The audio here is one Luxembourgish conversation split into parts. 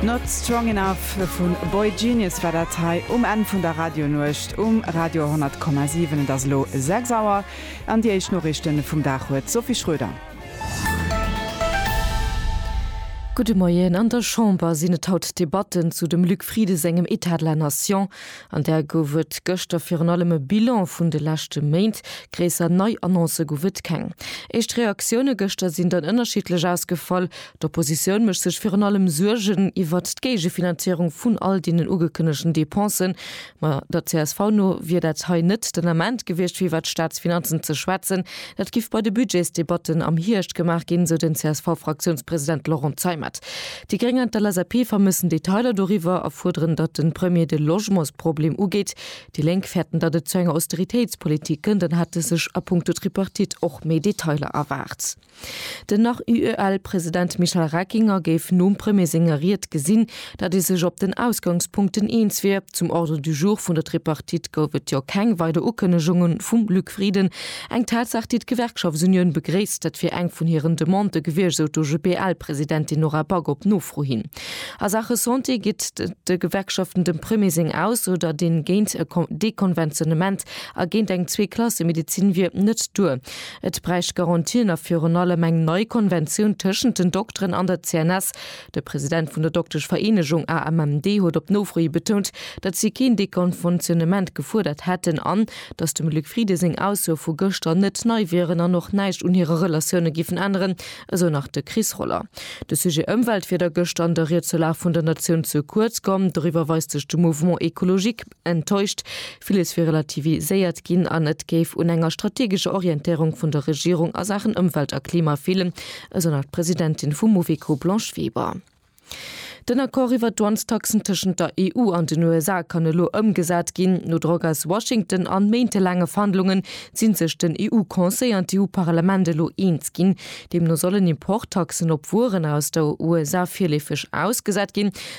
Not Strong Enough vu boygenius war dat hei um Enn vun der Radionuecht um Radio 100,7. Et ass elo 6 Auer an déi éischt Noriichte vum Dag huet d'Sophie Schröder. Gudde Moien. An der Chamber sinn et haut d'Debatten zu dem Luc Frieden sengem État de la Nation. An där gouf et gëschter virun allem e Bilan vun de leschte Méint. Gréisser nei Annoncë gouf et keng. Éischt Reaktioune gëschter sinn dann ënnerschiddlech ausgefall. D'Oppositioun mécht sech virun allem Suergen iwwert d'Géigefinanzéierung vun all deenen ugekënnegten Depensen. Ma der csv no wier dat hei net den Ament gewiescht, fir iwwert d'Staatsfinanzen ze schwätzen. Dat giff bei de Budgetsdebatten am Hierscht gemaach ginn, sou den CSV-Fraktiounspresident Laurent Zeimet. Déi Gréng an d'LSAP vermëssen Detailer doriwwer a fuerderen, datt de Premier de Logementsproblem ugeet. Déi Lénk fäerten, datt et zu enger Austeritéitspolitik kënnt an hätte sech a Punkto Tripartite och méi Detailer erwaart. Den nach UEL-President Michel Reckinger géif nom Premier senger Ried gesinn, datt ee sech op den Ausgangspunkten eens wier. Zum Ordre du jour vun der Tripartite gouf et jo keng weider Ukënnegunge vum Luc Frieden. Eng Tatsaach, déi d'Gewerkschaftsunioun begréisst. Dat wier eng vun hiren Demandë gewiescht, sou d'OGBL-Presidentin Nora Back op Nofro hin. A Saache Santé geet de Gewerkschaften dem Premier seng Aussoder, deen géint e Dekonventionnement a géint eng Zwee-Klasse-Medezin wier, net duer. Et bräicht Garantien a virun allem eng nei Konventioun tëschent den Dokteren an der CNS. De President vun der Dokteschvereenegung AMMD huet op Nofro hi betount, datt si keen Dekonventionnement gefuerdert hätten an, datt dem Luc Frieden seng Aussoe vu gëschter net nei wieren an och näischt un hire Relatioune giffen änneren, esou nach de Chris Roller. De Sujet Ëmwelt wier da gëschter an der Ried zur Lag vun der Natioun ze kuerz komm. Doriwwer weist sech de Mouvement écologique. enttäuscht, villes wier relativiséiert ginn an et géif un enger strategescher Orientéierung vun der Regierung a Saachen Ëmwelt a Klima feelen, esou nach d'Presidentin vum Mouveco, Blanche Weber. Den Accord iwwert d'Douanestaxen tëschent der EU an den USA kann elo ëmgesat ginn. No Drock aus Washington an méintelaange Verhandlungen sinn sech den EU-Conseil an d'EU-Parlament elo eens ginn. Deemno sollen Importtaxen op Wueren aus der USA virleefeg ausgesat ginn.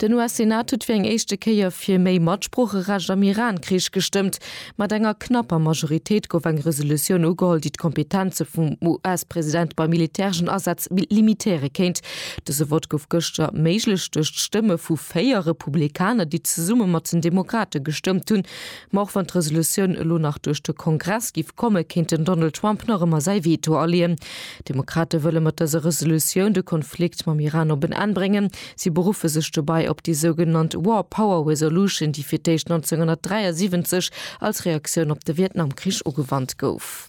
Den US-Senat huet fir eng éischte Kéier fir méi Matsproocherecht am Iran-Krich gestëmmt. Mat enger knapper Majoritéit gouf eng Resolutioun ugeholl, déi d'Kompetenze vum US-President bei militäreschen Asätz limitéiere kéint. Dëse Vott gouf gëschter méiglech duerch d'Stëmme vu véier Republikaner, déi zesumme mat den Demokrate gestëmmt hunn. Ma och wann d'Resolutioun elo nach duerch de Kongress giff kommen, kéint den Donald Trump nach ëmmer säi Veto aleeën. D'Demokrate wëlle mat dëser Resolutioun de Konflikt mam Iran op en Enn bréngen. Si beruffe sech dobäi op déi sougenannt War Power Resolution, déi fir d'éischt 1973 als Reaktioun op de Vietnamkrich ugewannt gouf.